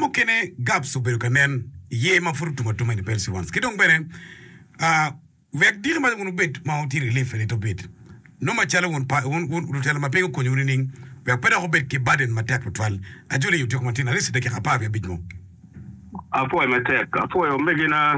Mukene Gaps obedo ka nen iye ma pud otum atuma in the pales ones ki dong bene wek diki ma wun wubed ma wutye relief a little bit nongo macalo wun pa wun wun lutela ma piny okonyowu nining wek pe dok wubed ki burden matek tutwal ajoli otyeko matin at least dakika apar wiye abic mo. Apwoyo matek, apwoyo omegina.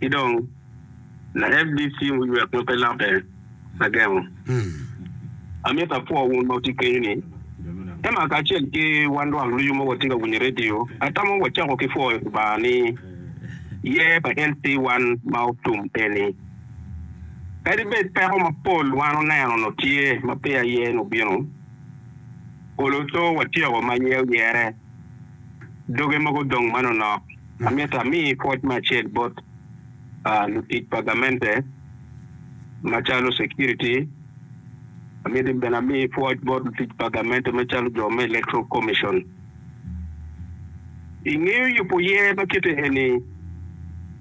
Ki dong, La FDC oywek ma pe lokke agengo. Amito apwo wun ma wutye kenyu ni, Emma kacel ki wan lwak ducu ma watye ka winyo redio, atamo wacako ki pwoyo Lubanga ni yer pa LC wan ma otum eni. Kadi bed peko mapol wan oneno onongo tye ma peya yer-ni obino, olo to watyeko ma yer oyere. doge mogo dong manonok. Amito ami pwoc me acel bot lutic pa gamente macalo security, amito bene ami pwoc bot lutic pa gamente macalo jo me Electoral Commission. I ngeyo yubo yer ma kite eni,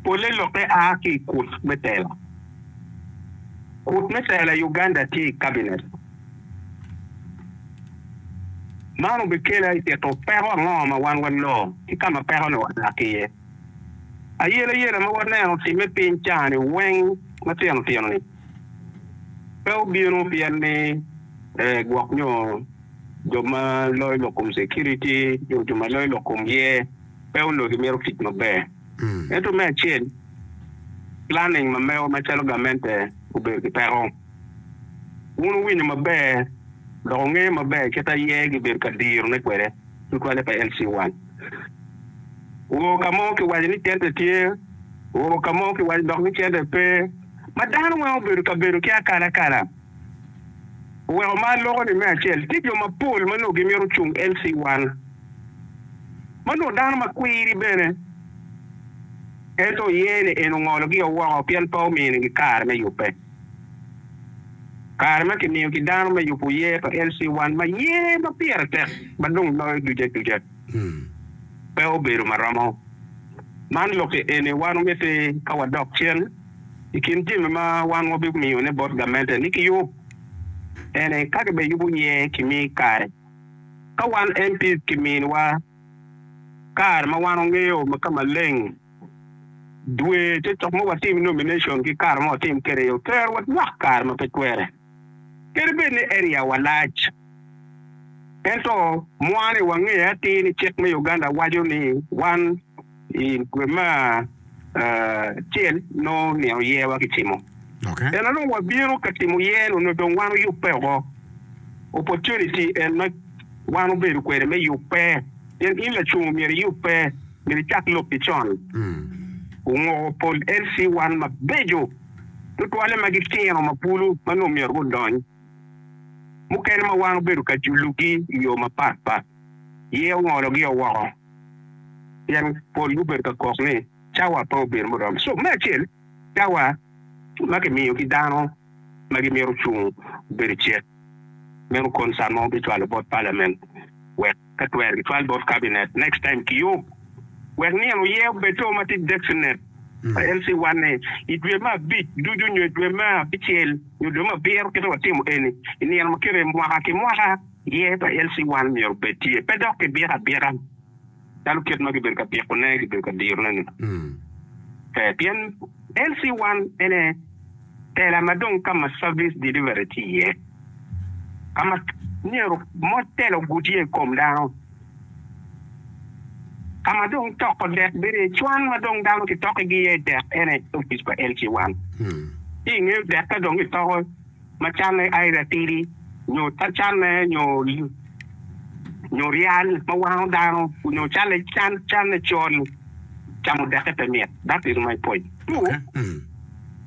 polle lokke a ki i kut me tela. Kut me tela i Uganda tye i Cabinet. Man obikela i tito peko ango ma wan waloo ki ka ma peko-ni oa ki iye? Ayelayela ma waneno otimme i piny ca-ni weng matino tino-ni pe obino pien ni gwok nyo jo ma loyo lok kom security nyo jo ma loyo lok kom yer pe onongo gimito tic maber. Ento me acel, planning ma mego macalo gamente obedo ki peko. Wun wuwinyo maber dok wungeyo maber kit a ye gibedo ka dirone kwede tutwalle pa LC1. Woko ka mo kiwaco ni cente tye, woko ka mo kiwaco dok ni cente pe, ma dano weng obedo ka bedo ki akalakala. Oweko ma aloko-ni me acel, tye jo mapol ma nongo gimito cung LC1, ma nongo dano ma kwiri bene, ento oye ni en ongologi o woko pien pe ominigi kare me yubbe. Kare ma kimiyo ki dano me yubo yer pa LC1 ma yer ma pire tek ma dong loyo ducu aduca pe obedo ma romo. Man lokke eni wan omiti ka wadok cen. I kin jami ma wan wabimiyone bot gamente ni kiyub ene ka kibene yubo yer kimi kare. Ka wan MPs kiminiwa kare ma wan wangeyo ka maleng. dwe te cok ma watim nomination ki kare ma watim kwede yo ter wa nywak kare ma pe twere kadi bed ni area wa lac ento mwa ni wange atir ni cik me Uganda waco ni wan i dwe ma acel nongo nino yer wa ki cimo en onongo wa bino ka timo yer onongo dong wan oyubbe oko opportunity en ma wan obedo kwede me yubbe pien in lacungo myero iyubbe. Myero icak lok ki con. Wungoko pol LC1 mabeco tutwalle ma gitino ma bulu ma nongo myero gudony. Mukene ma wan obedo ka julugi i yo mapat pat, yee ongologio woko pien pol gubedo ka kok ni cawa pe obedo muromo. So, me acel, cawa ma kimiyo ki dano ma gimito cung obedo cik. Meno concern ma wabicwalo bot Parliament wek. ka twer gitwal bot Cabinet next time kiyub wek nino oye obed to ma tye designet pa LC one ni i dwe me abic ducu nyo i dwe me abicel nyo dwe me abiro kite watimo eni i nino ma kite mwaka ki mwaka ye pa LC one myero obed tye pe dok kibiko abika calo kit ma gibedo ka biko ne gibedo ka diro ne ni pe pien LC one en aye Tela ma dong ka ma service delivery tye iye, ka ma myero mot tela oguti iye i kom dano, ka ma dong toko dek bedo iye, cwan ma dong dano kitokigi iye dek en aye opic pa LC1. Ci i nge dek ka dong kitoko ma canne either atidi nyo canne nyo nyo ryal ma wango dano nyo canne can canne col, camo dekke pe mit. That is my point two.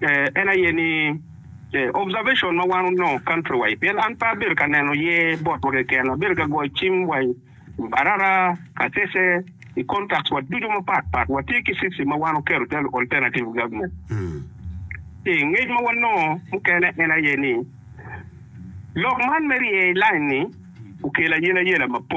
En aye ni, observation ma wan onongo country wide pien an pe abedo ka neno ye botwa keken, abedo ka goyo cim wa i Mbarara, Kasese, i contacts wa ducu mapat pat. Watye ki system ma wan oketo calo alternative government. Ci ngec ma wanongo mukene en aye ni lok man me rye i line-ni okelo ayelayela mapol.